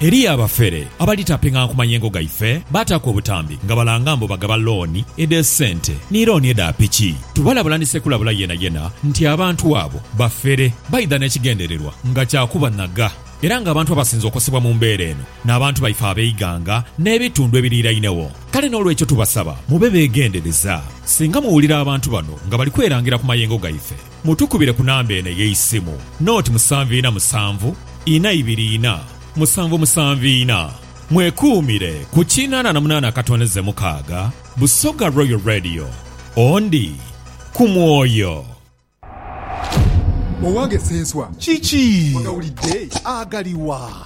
Eriyo abafere abali tapinga nku mayengo gaife baataku obutambi nga balanga mbu bagaba looni edhe sente ni looni edha piki. Tubalabula ni Ssekulabula yenayena nti abantu abo bafere baidha n'ekigendererwa nga kya kubanhaga era nga abantu abasinze okosebwa mu mbeera eno n'abantu baife ab'eighanga n'ebitundu ebiriirainegho. Kale n'olwekyo tubasaba mube beegendereza singa muwulira abantu bano nga bali kwerangira ku mayengo gaife. Mutukubire ku namba eno ey'eisimu, noti musanvu ina musanvu ina ibiri ina musanvu musanvu ina. Mwekuumire ku kinana na munana akatondeze mukaaga. Busoga Royal Radio, Ondi ku mwoyo. Owange Ssenswa, kiki ogawulidde? Agaliwa?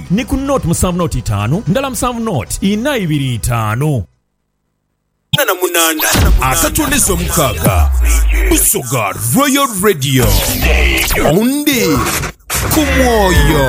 Ni ku nought musanvu nought itaanu ndala musanvu nought ina ibiri itaanu. Akatondeze omukaaga, Busoga Royal Radio, Omundi ku mwoyo.